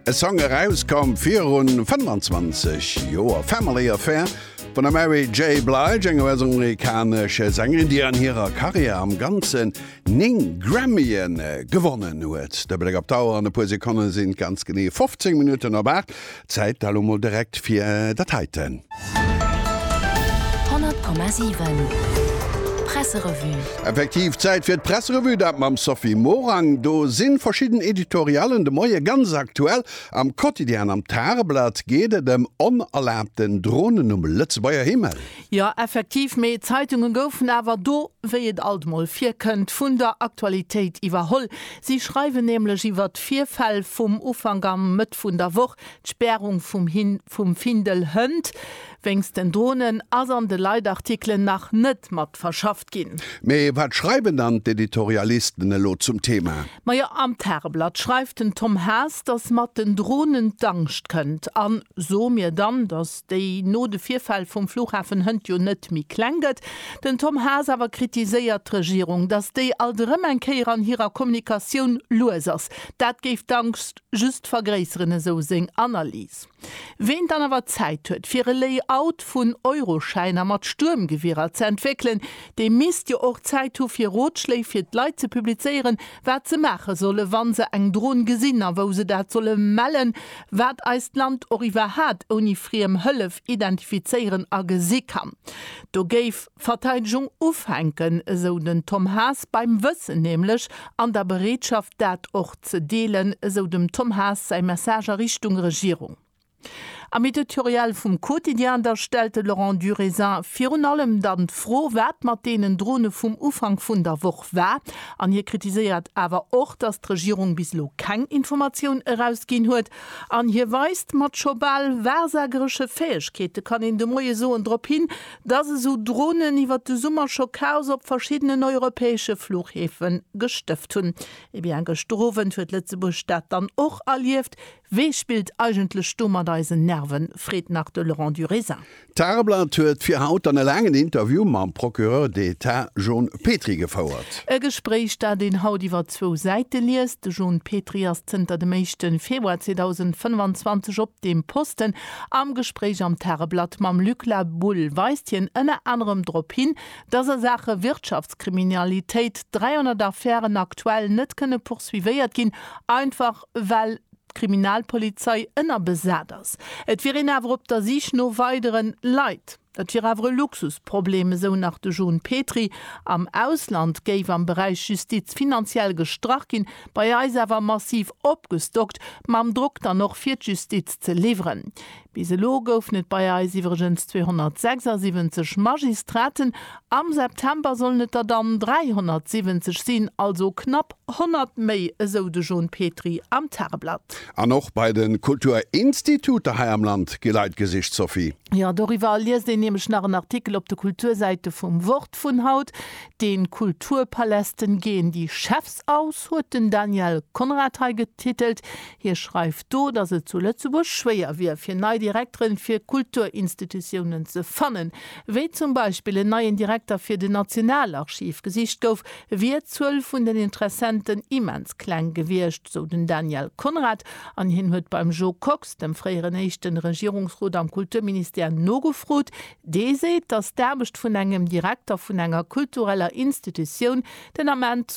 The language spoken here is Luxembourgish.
E Song erauskoum virun 25 Joer, Family Affair vun der Mary J. Blige, enger US-amerikanescher Sängerin, déi an hirer Karriär am Ganzen 9 Grammye gewonnen huet. De Bléck op d'Auer, an e puer Sekonne sinn et ganz genee 15 Minutten op 8. Zäit elo mol direkt fir dat heiten. 100,7 Presserevue. Effektiv Zäit fir d'Presserevue, dat mam Sophie Morang. Do si verschidden Editorialen de Moie ganz aktuell. Am Quotidien, am Tageblatt geet et ëm onerlaabten Dronen um Lëtzebuerger Himmel. Jo, effektiv, mee d'Zeitunge goufen awer do, wéi et alt mol virkënnt, vun der Aktualitéit iwwerholl. Si schreiwen nämlech iwwer d'Virfäll vum Ufank am. Fact vun der Woch, D'Spärung vum Hin vum Findel Hënt wéinst den Dronen ass an de Leitartikelen nach net mat verschafft ginn. Mee wat schreiwen dann d'Editorialisten elo zum Thema? Majo, am Tageblatt schreift den Tom Haas, datt mat den Dronen d'Angscht kënnt. An soe mir dann, datt déi no de Virfäll vum Flughafen Hënt jo net méi kleng gëtt. Den Tom Haas awer kritiséiert d'Regierung, datt déi alt erëm eng Kéier an hirer Kommunikatioun lues ass. Dat géif d'Angscht Just vergréisseren esou seng Analys. Ween dann awer Zäit huet fir e Layout vun Euroschäiner mat Stuermgewierer ze entwéckelen, dee misst jo och Zäit hu fir Rotschléi fir d'Leit ze publizéieren, wat se maache solle wa se eng Dron gesinn a wou se dat solle mellen, wat eist Land och iwwerhat ouni friem Hëllef identifizéieren a gesi kann. Do géif. Verteidegung ufänken, esou den Tom Haas, beim Wëssen nämlech an der Bereetschaft dat och ze deelen, esou dem Tom Haas säi Message a Richtung Regierung. Am Editorial vum Quotidien da stellt de Laurent Durisin virun allem dann d'Fro, wat mat deenen Drone vum Ufank vun der Woch war. An hie kritiséiert awer och, datt d'Regierung bis elo keng Informatioun erausginn huet. An hie weist mat scho bal wahrsageresche Fäegkeete, kann een de Moie soen, drop hin, Dass esou Dronen iwwert de Summer scho Chaos op verschiddenen europäesche Fluchhäfe gestëft hunn, eh bien gëschter Owend huet Lëtzebuerg dat dann och erlieft. Wee spillt eigentlech do mat eisen Nerven? freet nach de Laurent Durisin. D'Tageblatt huet fir haut dann e laangen Interview mam Procureur d'Etat John Petry gefouert. E Gespréich, dat een haut iwwer zwou Säite liest. De John Petry ass zënter dem éischte Februar 2025 op deem Posten. Am Gespréich am Tageblatt mam Luc La Boule weist hien ënner anerem drop hin, datt a Saache Wirtschaftskriminalitéit 300 Affären aktuell net kënne poursuivéiert ginn, einfach well d'Kriminalpolizei ënnerbesat ass. Et wier een awer op der Sich no weideren Leit. Et wier awer e Luxusproblem, esou nach de John Petry. Am Ausland géif am Beräich Justiz finanziell gestrach ginn, bei eis awer massiv opgestockt, mam Drock dann och fir d'Justiz ze liwweren. Bis elo goufen et bei eis iwwregens 276 Magistraten Am September sollen et der dann 370 sinn, also knapp 100 méi, esou de John Petry am Tageblatt. An och bei de Kulturinstituter hei am Land gi Leit gesicht, Sophie. Jo, doriwwer liest een nämlech nach en Artikel op de Kultursäite vum Wort vun haut. De Kulturpalästen gehen die Chefs aus, huet den Daniel Conrad hei getitelt. Hie schreift do, datt et zu Lëtzebuerg schwéier wier, fir nei Direkteren fir Kulturinstitutiounen ze fannen. wéi zum Beispill en neien Direkter fir den Nationalarchiv, gesicht gouf, wier d'Zuel vun den Interessenten immens kleng gewiescht, sou den Daniel Conrad. An hien huet beim Jo Kox, dem fréieren éischte Regierungsrot am Kulturministère, nogefrot. Dee seet, datt d'Aarbecht vun engem Direkter vun enger kultureller Institutioun den Ament,